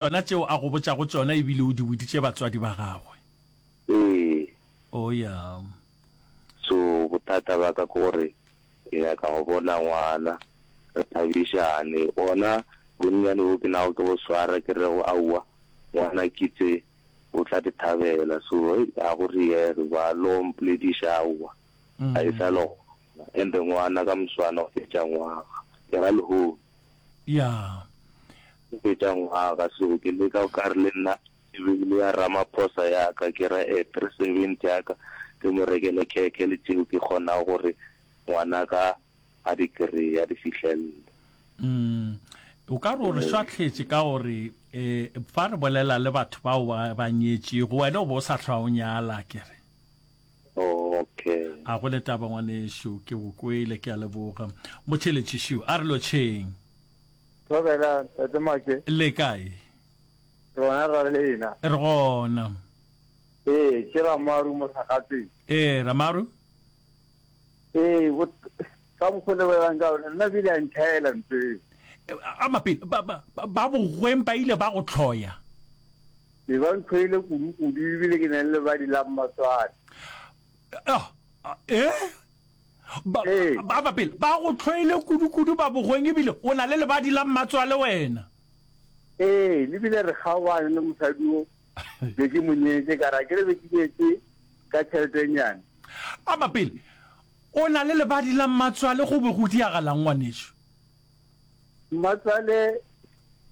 Tšona tšeo a go botšago tšona e bile o di boditše batswadi ba gagwe? Ee. Oh, ya. So, bothata ba ka ke gore ke nyaka go bona ngwana, re thabišane. Bona bonnyane boo ke nago ke bo swara, ke rego aowa, ngwana kitse o tla di thabela. So, hei, ga go riege ba lo mpolediša aowa, ga e sa le gona. And-e ngwana ka moswane o fetša ngwaga, ke ra lehono. Ya. Go fetša ngwaga, seo ke leka o ka re le nna ke beile ya Ramaphosa ya ka, ke ra e 370 ya ka, ke mo rekele khekhe le tšeo ke kgonago gore ngwana ka a di kreye, a di fihlelle. Umm, o ka re o re swahletše ka gore um fa re bolela le batho bao ba ba nyetšego, wena o be o sa hlwa o nyala, ke re. Okay. A go le taba ngwanešu ke go kwele ke a leboga. Motheletši šiu a re lo tšheng. Thobela tate Make. Le kae? Rona ra lena. Re gona. Ee, ke Ramaru Mothakgatseng. Ee, Ramaru. Ee, ka mokgwa le bolelang ka ona nna bile a nthaela ntho eo. A mapele ba ba ba bogweng ba ile ba go tlhoya. Be ba nthwele kudu-kudu ebile ke na le lebadi la mmaswati. Ah, eh? Ba, Ee. ba, ba pele, ba go tlhwele kudu-kudu ba bogweng ebile o na le lebadi la mmatswale wena. Ee, le bile re kgaogane le mosadi o be ke mo nyetse ka ra ke re be ke nyetse ka tšheletenyane. A ba pele, o na le lebadi la mmatswale go be go diagalang ngwanešu? Mmatswale,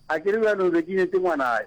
a ke re bjalo be ke nyetse ngwanayo.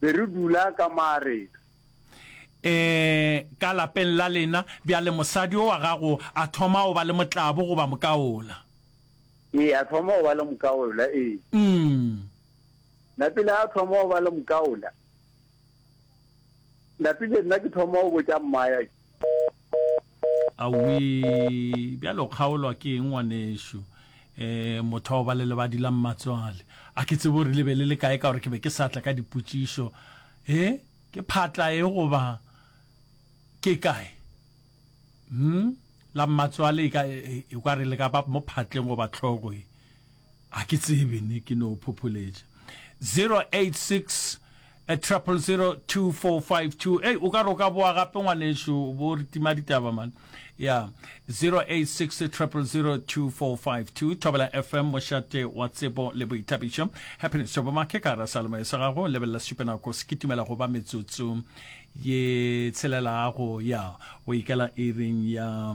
be re dula ka maareng. Ee, ka lapeng la lena. Bjale mosadi yo wa gago a thoma go ba le motlabo goba mokaola? Ee, a thoma go ba le mokaola, ee. Umm. Napile a thoma go ba le mokaola, napile nna ke thoma go botša mmaaya ke. Awii, bjale o kgaolwa ke eng ngwanešu? Eh, motho wa go ba le lebadi la mmatswale. A ke tsebe gore le be le le kae ka gore ke be ke sa tla ka dipotšišo. Eh, ke phatla e goba ke kae? Hum, la mmatswale e ka, e, e, e, e, ekwa re le ka ba mo phatleng goba tlhoko e. A ke tsebe ne ke no phopholetša 086 a triple zero two four five two hey o ka re o ka boa gape ngwaneso bo re tima ditaba man ya zero eight six triple zero two four five two thobela fm mošate wa tsebo le boithabišo happiness jobo make ka ra salome sa gago lebelela sesupenako se kitimela go ba metsotso ye tshelelago ya o ikela iring ya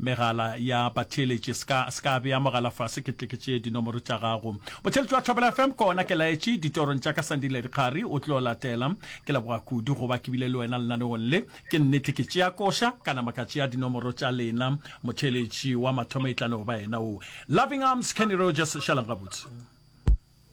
Megala ya batheeletši. Se ka, se ka bea mogala fase ke tle ke tšee dinomoro tša gago. Motheeletši wa Thobela FM, ko ona ke laetše ditorong tša ka Sandile Dikgari, o tlo latela. Ke leboga kudu go ba ke bile le wena lenaneong le. Ke nnete ke tšea koša, ka nama ka tšea dinomoro tša lena. Motheeletši wa mathomo e tla no ba yena wo. Loving Arms, Kenny Rogers, šalang gabotse.